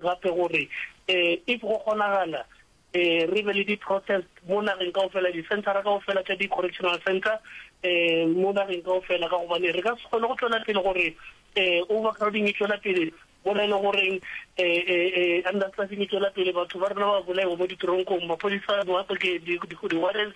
gape gore if go kgonagala re be le di-protest mo nageng kaofela, di-centre-ra kaofela tša di-correctional centre mo nageng kaofela, ka gobane re ka se kgone go tšwela pele gore overcrowding e tšwela pele mona e le goreng understaffing e tšwela pele, batho ba rena ba bolaewa mo diteronkong, maphodisa, di-warrants.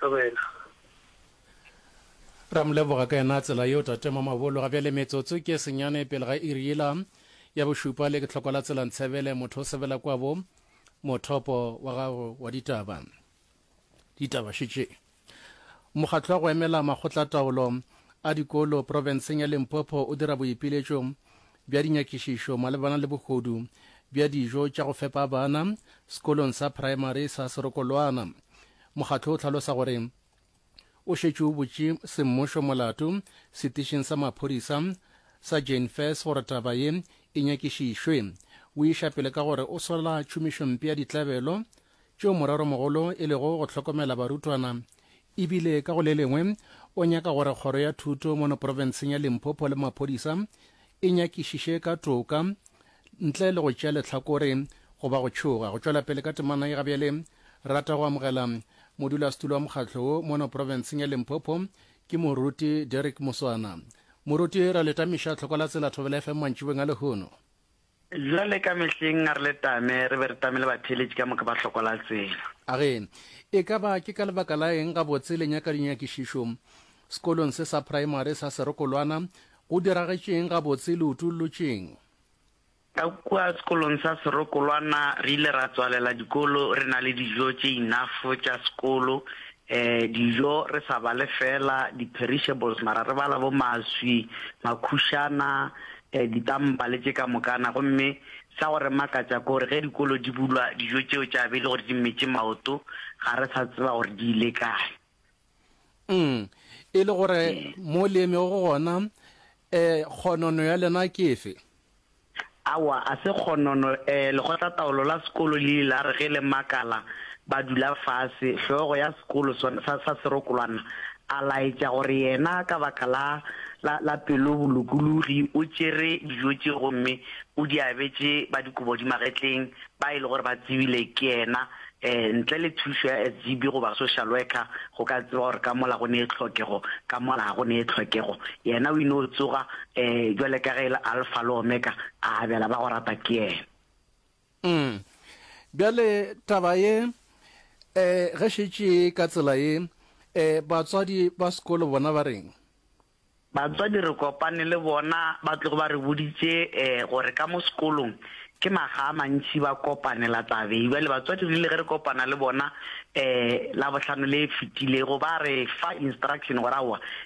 ka wena. Re a mo leboga ka yona tsela yeo Tate Mamabolo. Ga bjale metsotso ke e senyane pele ga iri yela ya bošupa le ke tlhoko la tsela Ntshebele motho o sebela kwabo mothopo wa gago wa ditaba. Ditaba šetše Mokgatlo wa go emela makgotlataolo a dikolo profenseng ya Limpopo o dira boipiletšo bja dinyakišišo malebana le bogodu bja dijo tša go fepa bana sekolong sa praemari sa Serokolwana. Mokgatlo o hlalosa gore o šetše o botše semmušo molato setišing sa maphodisa sa Jane Fess gore taba ye e nyakišišwe. O iša pele ka gore o sola tšhomišompe ya ditlabelo tšeo moreromogolo e lego go hlokomela barutwana e bile ka go le lengwe o nyaka gore kgoro ya thuto mono profenseng ya Limpopo le maphodisa e nyakišiše ka toka ntle le go tšea lehlakore goba go tšhoga go tšwela pele ka temana ye. Gabjale rata go amogela modulasetulo wa mokgatlo wo mono profenseng ya Limpopo ke moruti Derrick Muswana. Moruti, re le tamiša tlhoko la tsela Thobela FM mantšibeng a lehono. Bjale ka mehleng a re le tame, re be re tame le batheeletši ka moka ba hloko la tsela. A re, E ka ba ke ka lebaka la eng gabotse le nyaka dinyakišišo? Sekolong se sa praemari sa serokolwana, go diragetše eng gabotse? Le utollotše'ng? Ka kua sekolong sa serokolwana, re ile ra tswalela dikolo re na le dijo tše inafo tša sekolo, ee, dijo re sa bale feela di-perishables, mara re bala bo maswi, makhušana, ditampa le tše ka mokana, gomme sa go re makatša ke gore ge dikolo di bulwa dijo tšeo tša be e le gore di mmetše maoto ga re sa tseba gore di ile kae. Umm, e le gore mo le emego gona um kgonono ya lena ke efe? Aowa, a se kgonono, um lekgotlataolo la sekolo le ile la re ge le makala ba dula fase, hlogo ya sekolo sa serokolwana A laetša gore yena ka baka la, la, la pelobolokologi o tšere dijo tše gomme o di abetše ba dikobodimagetleng ba e le gore ba tsebile ke yena, ee, ntle le thušo ya SGB goba social worker go ka tseba gore ka mola go nee tlhokego, ka mola ga go nee tlhokego. Yena o ino tsoga, ee, bjale ka ge e le Alfa le Omega, a abela ba go rata ke yena. Umm. Bjale taba ye, eh, ge šetše e ka tsela ye, eh, batswadi ba sekolo bona ba reng? Batswadi re kopane le bona, ba tlogo ba re boditše, eh, gore ka mo sekolong ke makga a mantši ba kopanela tabeng. Bjale batswadi re ile ge re kopana le bona, eh, Labohlano le e fetilego, ba re fa instruction gore aowa,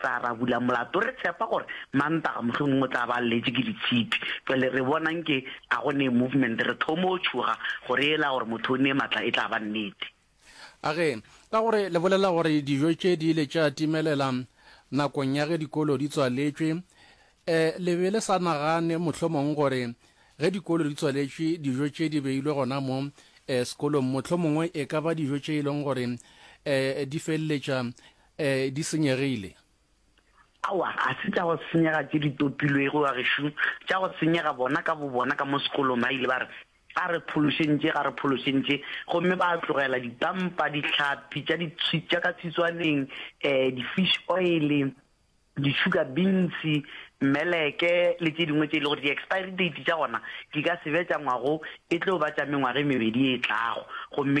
Tsa ra bula molato, re tshepa gore Mantaga mohlomongwe o tla ba a lletše ke ditshipi. Bjale re bona nke a go nee movement, re thomo tšhoga gore yela gore motho o nee matla e tla ba nnete. A re, Ka gore le bolela gore dijo tše di ile tša timelela nakong ya ge dikolo di tswaletšwe, eh, le be le sa nagane mohlomongwe gore ge dikolo di tswaletšwe dijo tše di beilwe gona mo, eh, sekolong, mohlomongwe e ka ba dijo tše e leng gore, eh, di feleletša E, di senyegile. Aowa, ga se tša go senyega tše di topilwego, bagešo, tša go senyega bona ka bobona ka mo sekolong. Ba ile ba re, Ga re phološentše, ga re phološentše. Gomme ba tlogela dipampa, dihlapi tša di, tša ka tshitswaneng, e, di-fish oil, di-sugar beans, meleke le tše dingwe tše e le gore di-expiry date tša gona di ka se be tša ngwago, e tlo ba tša mengwaga e mebedi e tlago. Gomme ke.